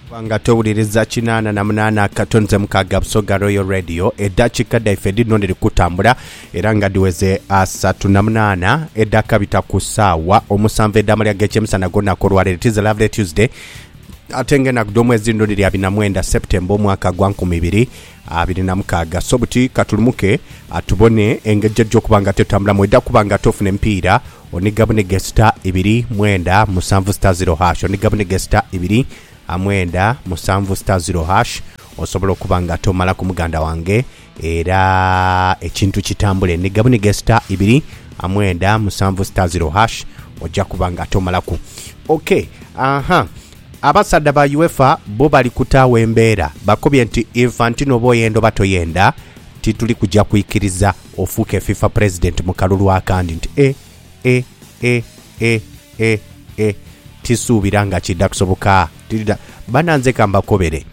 kubanga towuliriza kinana na munana kato nze mukaga busoga royal radio edakika daife dhino dhiri kutambula era nga dhiweze asatu na munana edakabita ku saawa omusanvu edamalya gekyemisana golunaku olwalero tiza lovely tuesday ate nga enaku dhomwezi dhino dhiri abiri na mwenda september omwaka gwa nkumi ibiri abiri na mukaaga. So buti katulumuke tubone engeri gy'ejja okuba nga tetambula. Mweda kuba nga tofuna emipiira oniga bunige sita ibiri mwenda musanvu sita ziro hash oniga bunige sita ibiri mwenda musanvu sita ziro hash osobola okuba nga tomalaku muganda wange era ekintu kitambule niga bunige sita ibiri mwenda musanvu sita ziro hash ojja kuba nga tomalaku ok aha Abasaadha ba UEFA bo bali kutaagho embeera bakobye nti Infantino oba oyenda oba toyenda tituli kuja kwikiriza ofuuke FIFA President mu kalulu akandi nti e, e, e, e, e, e, tisuubira nga kiidha kusobokaa. Tidha. Bana nze ka mbakobere.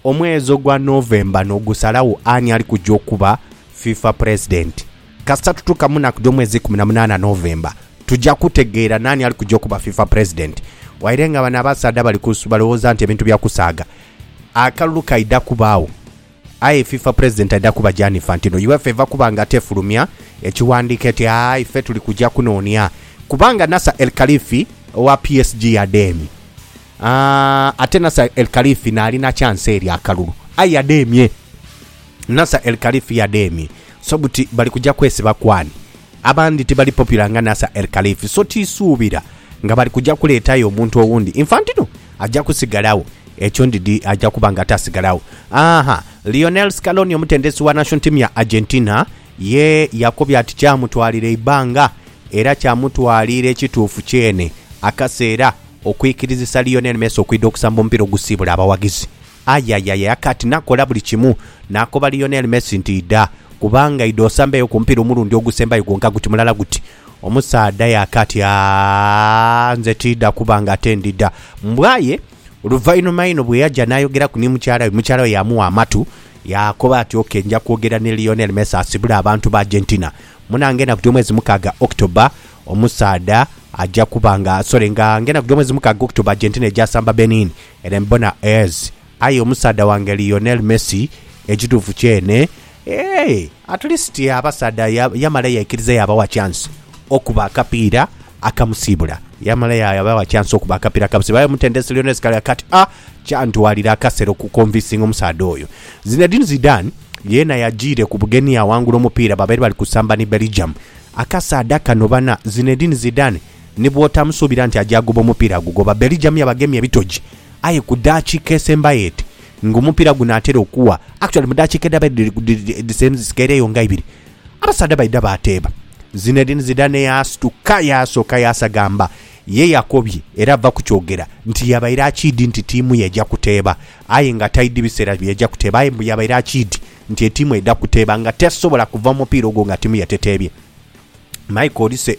Omwezi ogwa November n'ogusalagho ani ali kuja okuba FIFA President. Kasita tutuuka mu naku dh'omwezi ikumi na munaana, November, tuja kutegeera naani ali kuja okuba fifa president. Waire nga bano abasaadha bali ku balowooza nti ebintu bya kusaaga, akalulu kaidha kubaagho aye fifa president aidha kuba Gianni Infantino. Uefa eva kuba nga tefulumya ekiwandiiko eti aa ife tuli kuja kunoonia kubanga Nasser El Khalifi owa PSG yadheemye. Aa, ate Nasser El Khalifi n'alina chance eri akalulu aye yadheemye. Nasser El Khalif yademye so buti bali kuja kwesiba ku ani? Abandi tibali popular nga Nasser El Khalif so tisuubira nga bali kuja kuleetayo omuntu owundi. Infantino aja kusigalagho, ekyo ndidhi aja kuba nga tasigalagho. Aaha, Lionel Scaloni omutendesi wa national team ya Argentina ye yakobye ati kyamutwalira eibbanga era kyamutwalira ekituufu kyene akaseera okwikirizisa Lionel Messi okwidha okusamba omupiira ogusiibula abawaghizi. Aye, aye, aye, akati nakola buli kimu. Naakoba Lionel Messi nti, Idha, kubanga idha osambeyo ku mupiira omulundi ogusembayo gwonka guti mulala guti. Omusaadha yaaka ati, Aaa, nze tiidha kuba nga ate ndidha. Mbwa ye! Oluvainhuma inho bwe yaja n'ayogeraku ni mukyala we, mukyala we yaamugha amatu, yaakoba ati, Ok, nja kwogera ni Lionel Messi asibule abantu ba Argentina. Munange enaku dh'omwezi mukaaga, October, omusaadha aja kuba nga, sorry, nga, nga enaku dh'omwezi mukaaga, October, Argentina eja samba Benin. Ere mbona as aye omusaadha wange Lionel Messi ekituufu kyene eeh at least abasaadha ya yamala yekiriza yabawa chance okuba akapiira akamusibula yamala ya yabawa chance okuba akapiira akamusibula aye omutendesi Lionel Scaloni kati a kyantwalira akasera oku convincinga omusaadha oyo. Zinedine Zidane yeena yajiire ku bugenhi yawangula omupiira babaire bali kusamba ni Belgium. Akasaadha kano bana Zinedine Zidane Ni bw'otamusuubira nti aja agoba omupiira agugoba. Belgium yabagemye ebitoji aye ku daakiika esembayo eti ng'omupiira gunaatera okugha, actually mu daakiika edhaba edhisembayo dhisigairegho nga ibiri, abasaadha baidha baateeba. Zinedine Zidane yaasituka yaasooka yaasagamba. Ye yakobye era ava ku kyogera nti yabaire akiidhi nti tiimu ye eja kuteeba aye nga taidhi biseera byeja kuteeba aye mbu yabaire akiidhi nti etiimu edha kuteeba nga tesobola kuva mu mupiira ogwo nga tiimu ye teteebye. Michael Olise.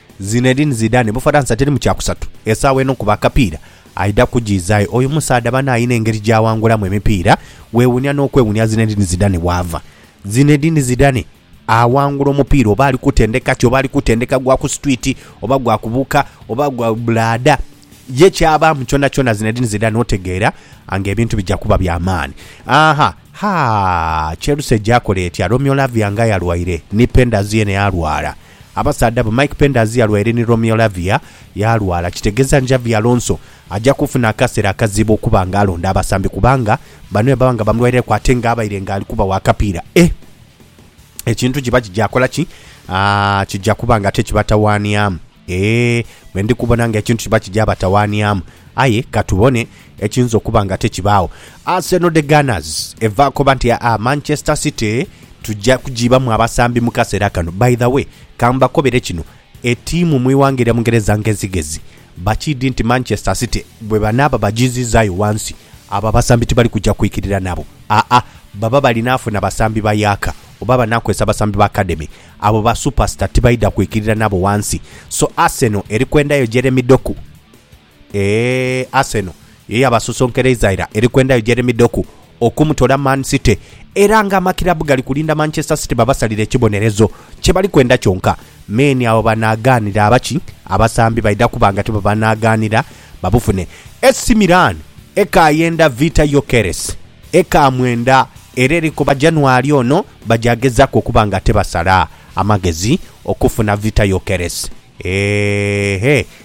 Zinedine Zidane Bufaransa teri mu kyakusatu esaawa eno kuba akapiira aidha kujiizayo oyo musaadha bane alina engeri gyawangulamu emipiira wewunia nokwewunia Zinedine Zidane waava Zinedine Zidane awangula omupiira oba ali kutendeka ki oba ali kutendeka gwa ku street oba gwa kubuuka oba gwa bulaada ye kyabaamu kyonakyona Zinedine Zidane otegeera nga ebintu bija kuba bya maani Aaha haa Chelsea gyakola etya Romeo Lavia nga yalwaire ni Penders yene alwala Abasaadha bo Mike Penders yalwaire ni Romeo Lavia yalwala kitegeza nti Xabi Alonso aja kufuna akasera akazibu okuba nga alonda abasambi kubanga bano yababa nga bamulwaireku ate nga abaire nga alikubawa akapiira e ekintu kiba kija kola ki aa kija kuba nga ate kibatawaniamu e bwendi kubona nga ekintu kiba kija batawaniamu aye katubone Ekiyinza okuba nga tekibaagho. Arsenal The Gunners eva koba nti aa Manchester City tuja kujiibamu abasambi mu kaseera kano. By the way, ka mbakobere kino, etiimu mu ighanga erya Bungereza ngezigezi bakiidhi nti Manchester City bwe banaaba bajiizizaayo ghansi, abo abasambi tibali kuja kwikirira nabo. Aa, baba balinaafuna basambi ba yaaka oba banaakozesa basambi ba academy. Abo ba superstar tibaidha kwikirira nabo ghansi. So Arsenal eri kwendayo Jeremy Doku. Eeh Arsenal ye yabasosonkereiza era eri kwendhayo Jeremy Doku okumutoola Man City era nga amakirabu gali kulinda Manchester City babasalire ekibonerezo kye bali kwenda kyonka me ni agho banaagaanira aba ki abasambi baidha kuba nga tibabanaagaanira babufune. AC Milan ekaayenda Vita Gyokeres eka mwenda era eri kuba January ono bajagezaku okuba nga tebasala amagezi okufuna Vita Gyokeres. Eeh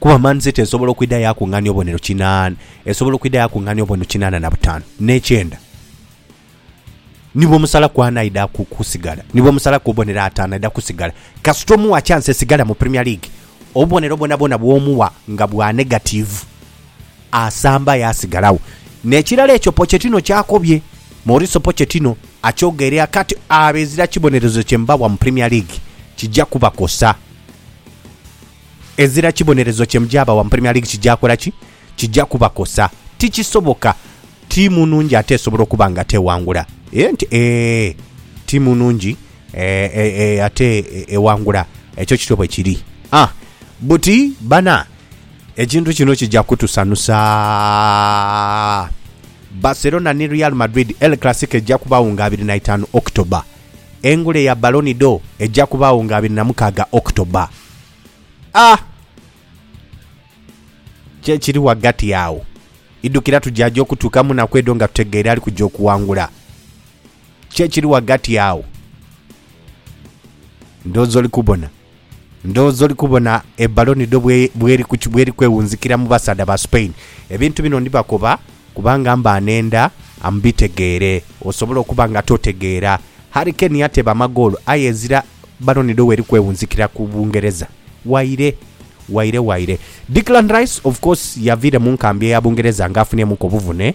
Kuba Man City esobola okwidha yaakung'aania obubonero kinan, esobola okwidha yaakung'aania obubonero kinaana na butaanu, n'ekyenda. Ni bwomusalaku ani aidha ku, kusigala, ni bwomusalaku obubonero ataanu aidha kusigala. Kasita omuwa kyansi esigala mu Premier League, obubonero bwonabwona bw'omuwa nga bwa negatiivu, asamba aye asigalagho. N'ekirala ekyo Pochettino ky'akobye, Mauricio Pochettino akyogeirea kati, abo ezira kibonerezo kye mbawa mu Premier League, kija kubakosa. Ezira kibonerezo kye muja bawa mu Premier League kija kola ki? Kija kubakosa. Tikisoboka ttiimu nnungi ate esobola okuba nga teewangula. Eeh nti eeh, ttiimu nnungi eeh eeh eeh ate ewangula. Ekyo kityo bwe kiri. Ah, buti bana, ekintu kino kija kutusanusa. Barcelona ni Real Madrid, El Clasico ejja kubagho nga abiri na itaanu October. Engule ya Ballon d'Or eja kubaagho nga abiri na mukaaga October. A. Ki ekiri ghagati agho? Idhukira tujaja okutuuka mu naku edho nga tutegeire ali kuja okuwangula. Ki ekiri ghagati agho? Ndhooza oli kubona. Ndhooza oli kubona e baloni dho bweri kwewunzikira mu basaadha ba Spain. Ebintu bino ndibakoba kubanga mba nenda mubitegeere. Osobola okuba nga totegeera. Harry Kane yateeba amagoolo aye ezira baloni dho weri kwewunzikira ku Bungereza. Waire. Waire waire. Declan Rice of course yaviire mu nkambi eya Bungereza nga afunyemu ku obuvune.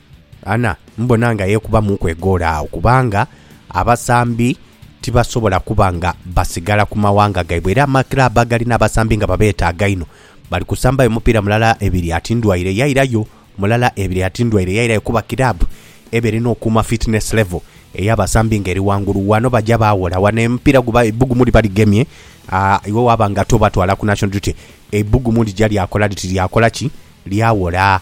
Anna, Mbona nga yeekubamuuku egoolo agho, kubanga abasambi tibasobola kuba nga basigala ku mawanga gaibwe era amakiraabu agalina abasambi nga babeetaaga inho bali kusambayo mupiira mulala ebiri ati ndwaire yairayo, mulala ebiri ati ndwaire yairayo kuba kiraabu eba erina okuuma fitness level ey'abasambi nga eri ghangulu. Ghano baja baaghola ghano omupiira guba eibbugumu liba ligemye iwe waaba nga tobatwala ku national duty, eibbugumu lija lyakola liti lyakola ki? Lyaghola.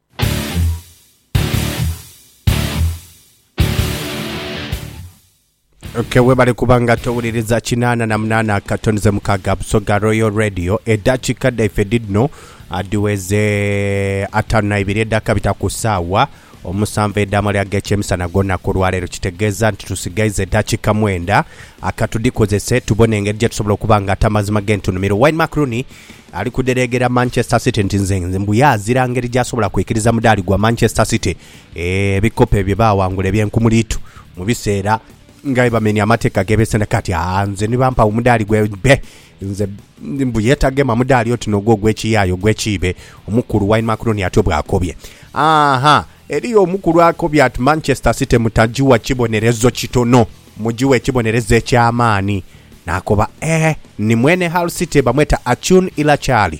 Okay, webale kuba nga towuliriza kinaana na munaana akatonize mukaaga Busoga Royal Radio eddakiika dhaife dhidhino ah, dhiweze ataano na ibiri edhakabita ku saawa omusanvu edh'amali ag'ekyemisana gw'olunaku olwaleero kitegeeza nti tusigaiza eddakiika mwenda akatudhikozese tubone engeri gye tusobola okuba nga ate amazima g'entunumiro Wine Mac Rooney Ali kudhereegera Manchester City nti nze nze mbu yaazira ngeri gy'asobola kwikiriza mudaali gwa Manchester City ebikopo bye baawangula eby'enkumuliitu mu biseera nga bwebamenya amateeka geebeesenda kati aa nze ni bampa omudaali gwe be nze mbu yeetagema mudaali oti n'ogwo ogw'ekiyaaye ogw'ekiibe, omukulu Wayne Macroni atyo bw'akobye. Aahaa, eriyo omukulu akobye ati Manchester City mutagiwa kibonerezo kitono. Mugighe ekibonerezo eky'amaani. Naakoba, Ee, ni mwene Hull City, bamweta Achun Ilachaali.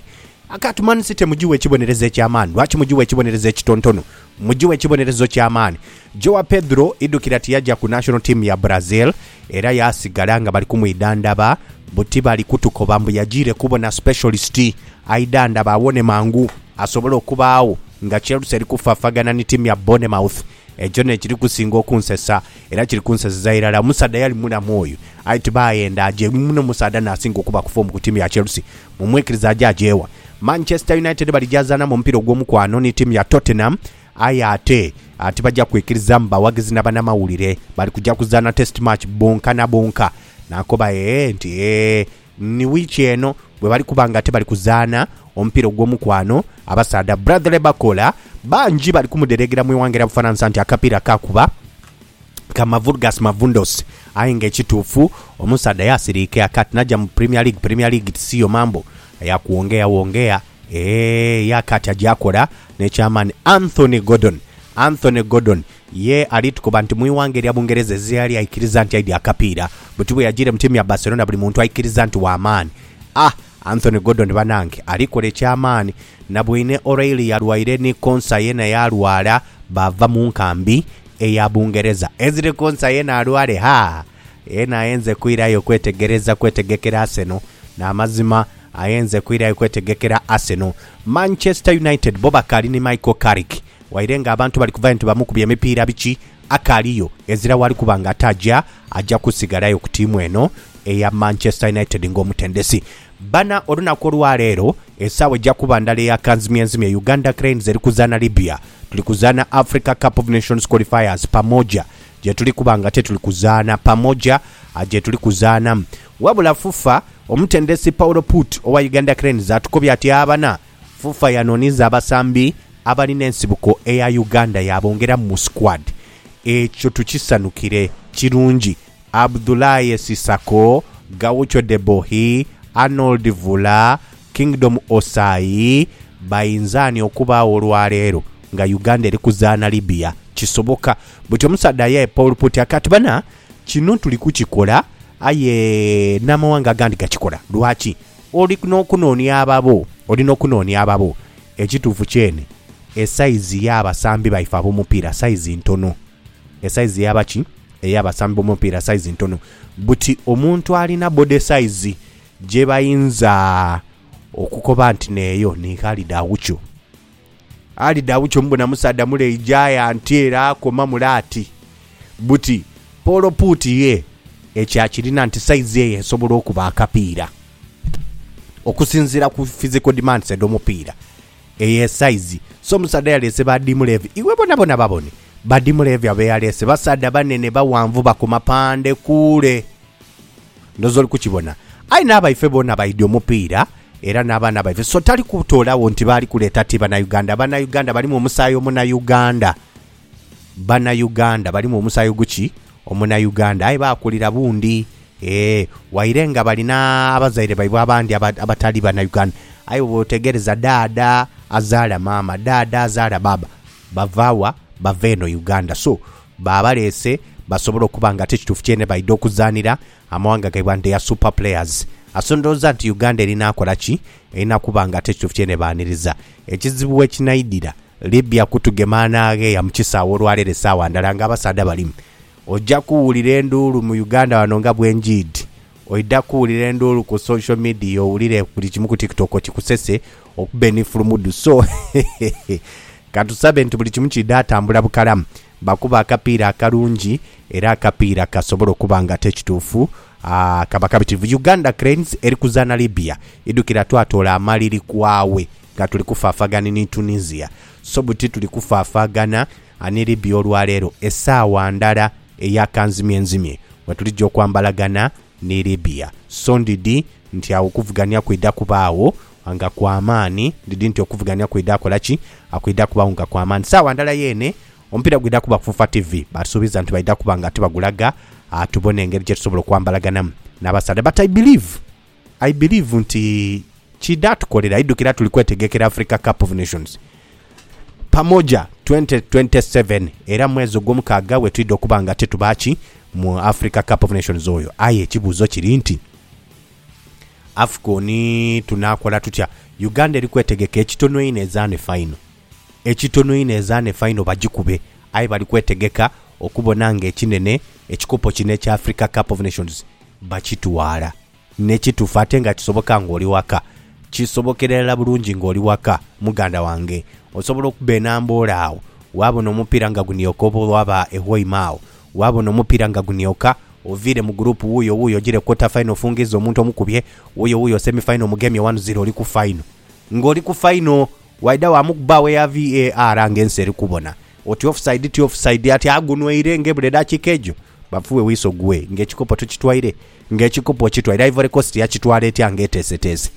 Khartuman City mugighe ekibonerezo eky'amaani. Lwaki mugighe ekibonerezo ekitontonu? Mugighe ekibonerezo ky'amaani. Joao Pedro, idhukira tiyaja ku national team ya Brazil, era yaasigala nga bali kumwidhandhaba buti bali kutukoba mbu yajiire kubona specialist aidhandhaba awone mangu asobole okubaagho nga Chelsea eri kufaafagana ni tiimu ya Bournemouth Ekyo n'ekiri kusinga okunsesa, era kiri kunseseza irala. Omusaadha yali mulamu oyo, aye ti baghenda. Aje muno musaadha n'asinga okuba kufoomu ku tiimu ya Chelsea. Mumwikirize aje aje wa? Manchester United bali gyazaanamu omupiira ogw'omukwano ni tiimu ya Tottenham, aye ate tibaja kwikirizamu bawagizi na banamawulire. Bali kuja kuzaana Test match bonka na bonka. Naakoba ee nti, Ee. Ni wiiki eno bwebali kuba nga ate bali kuzaana omupiira ogw'omukwano, abasaadha Bradley Bakola bangi bali kumudereegera mu ighanga lya Bufaransa nti akapiira kaakuba ka mavurgas mavundos aye nga ekituufu omusaadha yaasiriika aka tinaja mu Premier League, Premier League ti siyo mambo ya kuwongea wongea eeh, ye aka ti aja kola n'ekyamaani Anthony Gordon Anthony Gordon Ye ali tukoba nti mu ighanga erya Bungereza ezira yali aikiriza nti aidhi akapiira, buti bwe yajiire mu tiimu ya Barcelona buli muntu aikiriza nti wa maani. A Anthony Gordon banange ali kola ekya maani. Nabwine O'Reilly yalwaire ni Konsa yeena yaalwala baava mu nkambi eya Bungereza. Ezri Konsa yeena alwale ha! Yeena ayenze kwirayo kwetegereza kwetegekera Arsenal. Na mazima ayenze kwirayo kwetegekera Arsenal. Manchester United bo bakaali ni Michael Carrick Waire nga abantu bali kuva nti bamukubye emipiira biki, akaaliyo, ezira waali kuba nga ataaja, aja kusigalayo ku ttiimu eno eya Manchester United ng'omutendesi. Bana, olunaku olwa leero, esaawa eja kuba ndala eya kanzimyenzimye, Uganda Cranes eri kuzaana Libya, tuli kuzaana Africa Cup of Nations Qualifiers pamoja, gyetuli kuba nga ate tuli kuzaana pamoja, gyetuli kuzaana. Wabula FUFA, omutendesi Paul Put owa Uganda Cranes atukobye ati, Abana, FUFA yanooniza abasambi abalina ensibuko eya Uganda yaabongeramu mu squad. Ekyo tukisanukire. Kirungi. Abdoulaye Cissakho, Gaucho Debohi, Arnold Vula, Kingdom Ossai, bainzaani okubaagho olwaleero nga Uganda eri kuzaana Libya? Kisoboka. Buti omusaadha aye e pole put aka ati, Bana, kino tuli kukikola aye n'amawanga agandi gakikola. Lwaki? Oli n'okunoonia ababo, oli n'okunoonia ababo. Ekituufu kyene, esaizi y'abasambi baife ab'omupiira saizi ntono. Esaizi ey'aba ki? Ey'abasambi b'omupiira saizi ntono. Buti omuntu alina body size gye bayinza okukoba nti n'eyo ni Khalid Aucho. Ali dha bukyo mubona musaadha mule aija y'anti era akoma mule ati, Buti, Paul Put ye? Ekyo akirina nti saizi eye esobola okuba akapiira. Okusinziira ku physical demands edh'omupiira, eyo esaizi. So omusaadha yaleese ba Dim Levy. Iwe bonabona babone, ba Dim Levy abe yaleese basaadha banene, baghanvu, bakoma pande kuule. Ndhooza oli kukibona. Aye n'abaife boona baidhi omupiira era n'abaana baife, so tali kutoolagho nti baali kuleeta ti Banauganda. Banauganda balimu omusaayi Omunauganda. Banauganda balimu omusaayi oguki? Omunauganda. Aye baakulira bundi. Eeh, waire nga bali n'abazaire baibwe abandi abatali Banauganda, aye bw'oteegereza dhaadha azaala maama, dhaadha azaala baaba, bava wa? Bava eno Uganda. So, baabaleese basobole okuba nga ate ekituufu kyene baidha okuzaanira amawanga gaibwe and their super players. Aso ndhooza nti Uganda erinaakola ki? Erina kuba nga ate ekituufu kyene baaniriza. Ekizibu wekinaidhira Libya kutugema anaagheeya mu kisaawe olwaleero esaawa ndala nga abasaadha balimu. Oja kuwulira enduulu mu Uganda wano nga bwenjiidhi Oidha kuwulira enduulu ku social media owulire buli kimu ku tiktok kikusese okube ni fulumudu so hehehe katusabe nti buli kimu kiidha tambula bukalamu bakube akapiira akalungi era akapiira kasobola okuba nga ate ekituufu aa kaba kabitivu Uganda Cranes eri kuzaana Libya idhukira twatoola amaliri kwaawe nga tuli kufaafagani ni Tunisia so buti tuli kufaafagana ni Libya olwaleero esaawa ndala eya kanzimyenzimye nga tulija okwambalagana ni Libya. So ndidhi nti agho okuvugania kwidha kubaagho nga kwa maani. Ndidhi nti okuvugania kwidha kola ki? Kwidha kubaagho nga kwa maani. Saagha ndala yeene omupiira gwidha kuba ku Fufa TV. Baatusuubiza nti baidha kuba nga tibagulaga tubone engeri gye tusobola okwambalaganamu n'abasaadha. But I believe I believe nti kidha tukolera idhukira tuli kwetegekera Africa Cup of Nations pamoja 2027 era mwezi ogwomukaaga wetwidha okuba nga tituba ki mu Africa Cup of Nations oyo aye ekibuuzo kiri nti Afcon tunaakola tutya? Uganda eri kwetegeka ekitono einho ezaane final. Ekitono inho ezaana efaino bagikube aye bali kwetegeka okubona ng'ekinene, ekikopo kino ekya Africa Cup of Nations, bakitwala. Ni kitufu ate nga kisoboka ng'oli waka. Kisobokera irala bulungi ng'oli waka, muganda wange. Osobola okuba e Namboole agho, waabona omupiira nga gunioka oba waaba e Hoima agho, waabona omupiira nga gunioka, oviire mu guruupu wuuyo wuuyo ojiire quarter final ofungizza omuntu omukubye, wuuyo wuuyo semi final omugemye one ziro oli ku final. Ng'oli ku final, Waidha waamukuba agho eya VAR nga ensi eri kubona oti offside ti offside ati agunweire nga ebula edhakiika egyo bafuwe wiso gwe nga ekikopo tokitwaire nga ekikopo okitwaire Ivory Coast yakitwala etya nga eteeseteese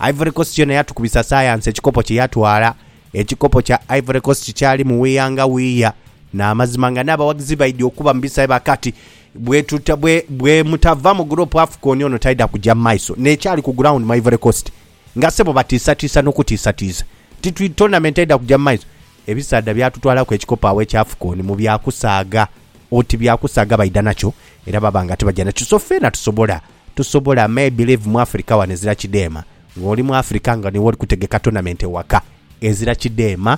Ivory Coast yona yatukubisa sayansi ekikopo kye yatwala ekikopo kya Ivory Coast kyali mu wiya nga wiya n'amazima nga n'abawagizi baidhi okuba mu bisae ba kati bwetuta bwe bwemutava mu group Afcon ono taidha kugya mu maiso n'ekyali ku ground mu Ivory Coast Nga sebo batiisatiisa n'okutiisatiisa nti twi tournament eidha kuja mu maiso, ebisaadha byatutwalaku ekikopo agho ekya Afcon mu bya kusaaga oti bya kusaaga baidha nakyo era baba nga tibaja nakyo so feena tusobola tusobola me believe mu Africa wano ezira kidheema ng'oli mu Africa nga niwe oli kutegeka tournament ewaka ezira kidheema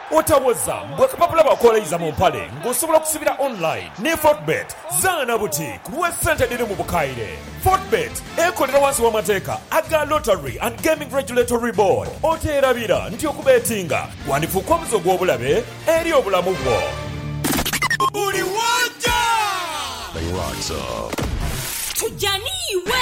Otawoza mbu akapapula bakoleiza mu mpale nga osobola okusibira online ni Fortebet. Zaana buti ku lwe sente edhiri mu bukaire. Fortebet ekolera wansi wa mateeka aga Lottery and Gaming Regulatory Board. Oteerabira nti okubetinga kwandifuuka omuze ogw'obulabe eri obulamu bwo. Buli w'oja. Bali locked up. Tujja n'iwe.